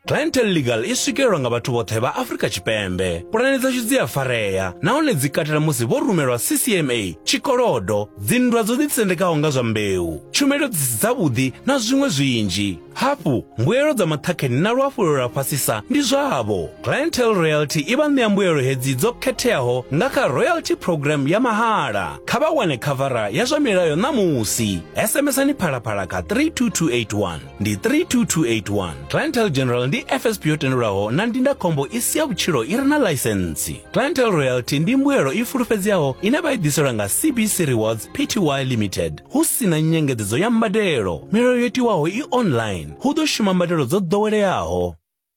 clientele legal i swikelelwa nga vhathu vhoṱhe vha afrika tshipembe pulane dzashu dzi a farea nahone dzi katela musi vho rumelwa ccma tshikolodo dzinndwa dzo ḓitsendekaho nga zwa mbeu tshumelo dzi si dzavhuḓi na zwiṅwe zwinzhi hafhu mbuelo dza maṱhakheni na luhafhulelo lwa fhasisa ndi zwavho clientele royalty i vha ṋea mbuelo hedzi dzo khetheaho nga kha royalty program ya mahala kha vha wane khavara ya zwa milayo ṋamusi sms-ani phalaphala kha 32281 ndi 32281 clientel general ndi fsp yo tendelwaho na ndindakhombo i si ya vhutshilo i re na laisentsi clientel royalty ndi mbuelo i fulufhedzeaho ine vha i ḓiselwa nga cbc rewards pty limited hu si na nyengedzedzo ya mbadelo milayo yo tiwaho i online hu ḓo shuma mbadelo dzo ḓoweleaho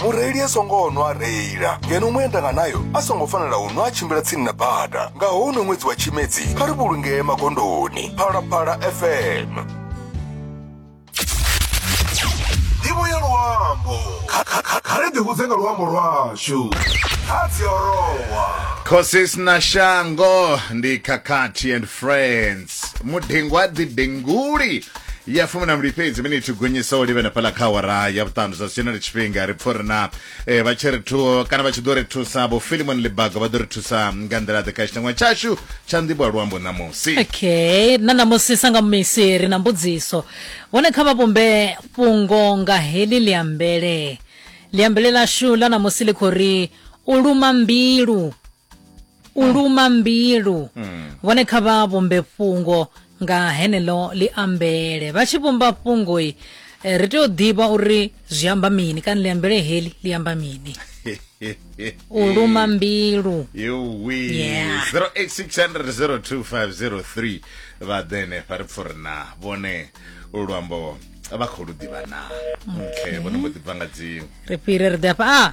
mureili a songo nwa a reila ngeno muendanga nayo a songo fanela u nwa a tshimbila tsini na bada nga houno ṅwedzi wa tshimedzi kha ri vhulungee magondoni phalaphala fm ndivho ya luambo Kha- kha- kha- kha ri ḓihudze nga luambo lwashu kha dziorowa Khosis na Shango ndi Kakati and Friends. mudengwa didenguli ya fumi na mbili fhedzi miniti gonyisa u livhena fhaḽa kha awara ya vhuṱanu zwa zwino ri tshifhinga ri pfha uri na eh, vha tshi ri thu kana vha tshi ḓo ri thusa vho filimon libaga vha ḓo ri thusa nga nḓila ḓe kha tshitangwa tshashu tsha nḓivho ya luambo ṋamusi okay na ṋamusi sanga misi ri na mbudziso hone kha vha vhumbe fhungo nga heḽi liambele liambele lashu ḽa ṋamusi ḽi khou ri u luma mbilu u luma mbilu mm. vhone kha vha vhumbe fhungo nga henelo ḽi ambele vha tshi vhumba fhungo i eh, ri tea u ḓivha uri zwi amba mini kana ḽi ambele heli ḽi amba mini u luma mbilu yeah. 0860025003 vha ḓe henefha ri pfuri na vhone luambo vha khou lu ḓivha na okay vhone mbo ḓi bva nga dziṅwe ri fhire ri ḓe hafha a ah!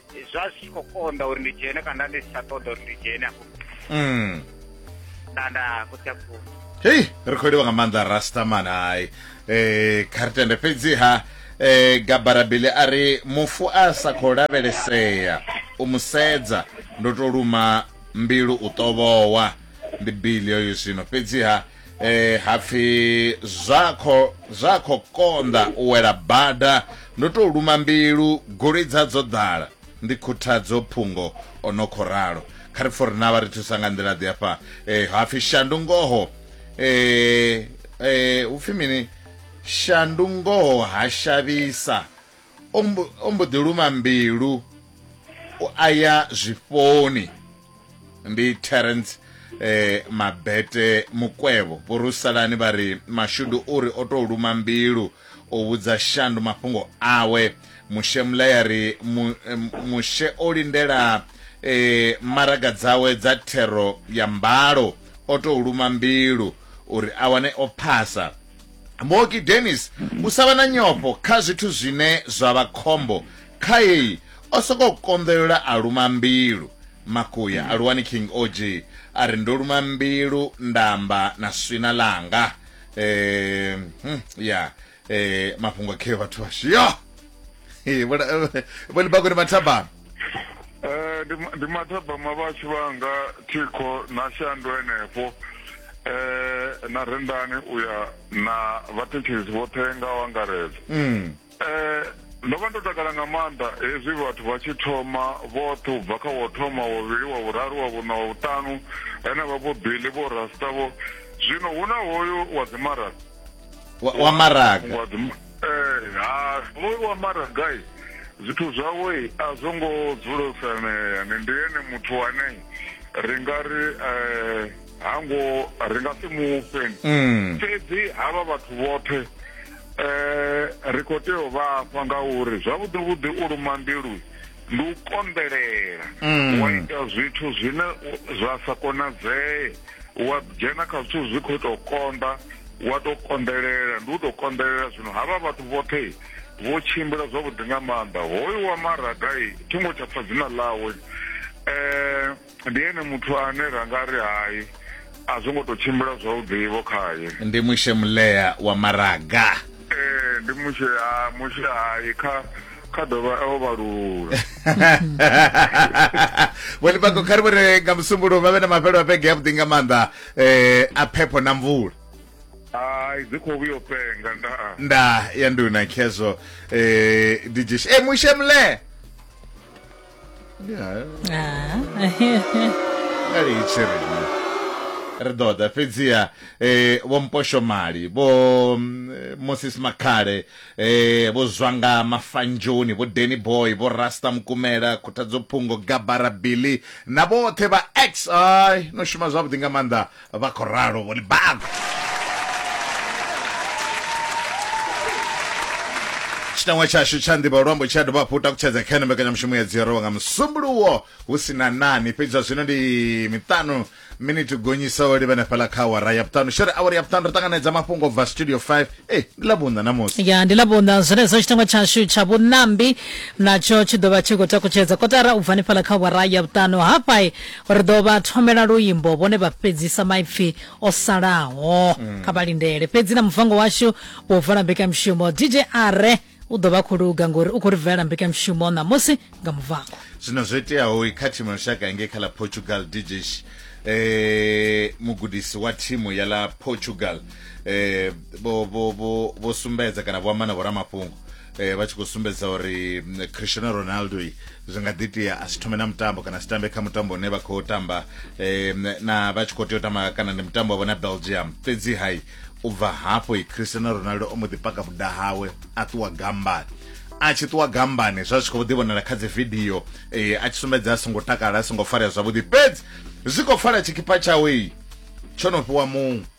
zwa zwi tshi khou konḓa uri ndi dzhene kana ndi si tsha ṱoḓa uri ndi dzhene afho mm. nda nda khotsi a khulu hei ri khou livha nga maanḓa rastaman hai um eh, kha ri tende fhedziha eh gabarabili a ri mufu a sa khou lavhelesea u mu sedza ndo to luma mbilu u tovhowa ndi bili yoyo zwino fhedziha eh hapfi zwa kho zwa kho konda u wela bada ndo to luma mbilu goloi dza dzo ḓala ndi khuthadzo phungo ono kho ralo kha ri fori na vha ri thusa nga nḓila ḓi afha eh hapfi shandu ngoho eh eh upfi mini shandu ngoho ha shavhisa o mbo- o mbo ḓi luma mbilu u aya zwifhoni ndi terence eh, mabete mukwevho vhorusalani vha ri mashudu u ri o tou luma mbilu o vhudza shandu mafhungo awe mushe mulaya ri mu, eh, mushe o lindela eh, maraga dzawe dza thero ya mbalo o tou luma mbilu uri a wane o phasa Mooki Dennis u sa vha na nyofho kha zwithu zwine zwa vha khombo khaei o sokou konḓelela a luma mbilu. Makuya a luwani King OG a ri ndo luma mbilu nda amba na swina ḽanga. Eh, hmm, ya eh, mafhungo kheo vhathu vhashu yo vho libakoni mathabana Eh ndi ndi mathabama vhashu vhanga thikho na shandu henefho eh na rendani uya na vhathekisi vhoṱhe nga wangaredza mm. eh ndo vha ndo takala nga maanḓa hezwi vhathu vha tshi thoma vhoṱhe u bva kha wo thoma wovhili wa vhuraru wa vhuṋa wa vhuṱanu henevha vho bili vho rasta vho zwino hu na hoyu wa dzimaraka wa maraga Ee, ha smoiwa mara gai zwithu zwawe a zwo ngo dzula fanea ni ndi ene muthu wane ri nga ri um hango ri nga si mufhe mm. fhedzi havha vhathu vhoṱhe um ri khou tea u vhafha ngauri zwavhuḓi vhuḓi u luma mbilu ndi u konḓelela mm. wa ita zwithu zwine zwa sa konadzee wa dzhena kha zwithu zwi khou tou konḓa wa tou konḓelela ndi u tou konḓelela zwino havha vhathu vhoṱhe vho tshimbila zwavhuḓi nga maanḓa hoyu wa maragai thingo tsha pfa dzina ḽawe um Ndi ene muthu ane ra nga ri hai a zwo ngo tou tshimbila zwavhuḓivho khaye. Ndi Mushe Mulea wa Maraga. Ee, ndi Mushe, ha, Mushe hai kha kha dovha o vhalula vhonibako kha ri vhone nga musumbulowo vha vhe na mafhelo a vhege yavhuḓi nga maanḓa um a phepho na mvula hai dzi khou vhuyo penga nda nda ya nduna khezwo um eh, dijish e eh, mushe mlee litshe riṋe ri ḓo ḓa fhedziha eh, vho mposhomali vho mm, eh, moses makhale eh, vho zwanga mafanjoni vho deni boy vho rasta mukumela khuthadzo phungo gabara billy na vhoṱhe vha x ai no shuma zwavhuḓi nga maanḓa vha khou ralo vhone bago tshitangwa tshashu tsha nḓivha luambo tshi a dovha hafhu takutshedza kha ene mbekanyamushumo ya dziorowa nga musumbuluwo hu si na nani fhedzi zwa zwino ndi miṱanu miniti gonyisa o livha nefhala kha awara ya vhuṱanu shere awara ya vhuṱanu ri ṱanganedza mafhungo bva studio 5 e ndi ḽa vhunḓa namusi ya ndi ḽa vhunḓa zwenezwo tshitangwa tshashu tsha vhunambi natsho tshi ḓo vha tshi khou takutshedza kotara u bva nefhala kha awara ya vhuṱanu hafha Ri ḓo vha thomela luimbo vhone vha fhedzisa maipfi o salaho. Mm. Kha vha lindele fhedzi na muvango washu wo vala mbekanyamushumo DJ Are u ḓo vha khou luga ngori u khou ri bvelela mbekanyamushumo ṋamusi nga muvango. Zwino zwo iteaho kha thimu ya lushaka ngei kha ḽa Portugal DJ eh mugudisi wa thimu ya ḽa Portugal eh vho vho vho sumbedza kana vho amba na vho ramafhungo eh, vha tshi khou sumbedza uri mm, cristiano ronaldo zwi nga ḓi tea a si thome na mutambo kana si tambe kha mutambo une vha khou tamba eh, na vha tshi khou tea u tamba kana ndi mutambo wavho na belgium fhedzi hai u bva hafho i cristiano ronaldo o mbo ḓi paka vhuda hawe a ṱuwa gambani a tshi ṱuwa gambani zwa zwi khou ḓi vhonala kha dzi vidio eh, a tshi sumbedza a songo takala a songo farea zwavhuḓi fhedzi zwi khou fara tshikhipha tshawe tsho no fhiwa muṅwe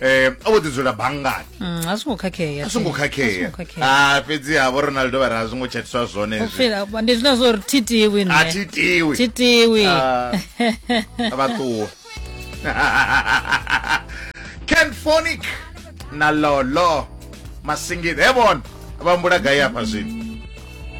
um o vho ḓi dzula banngani Mm, a zwo ngo khakhea a songo A zwo khakhea ngo khakhea. Ah, a fhedzi ha vho ronaldo vha ri a zwo ngo tshatiswa zwone U hezwi feel- ba- ndi zwina zwo ri thitiwi a thi tiwi thitiwi Ah, vha ṱuwa kenfonic na lolo masingita he vona vha mbula gai afha zwino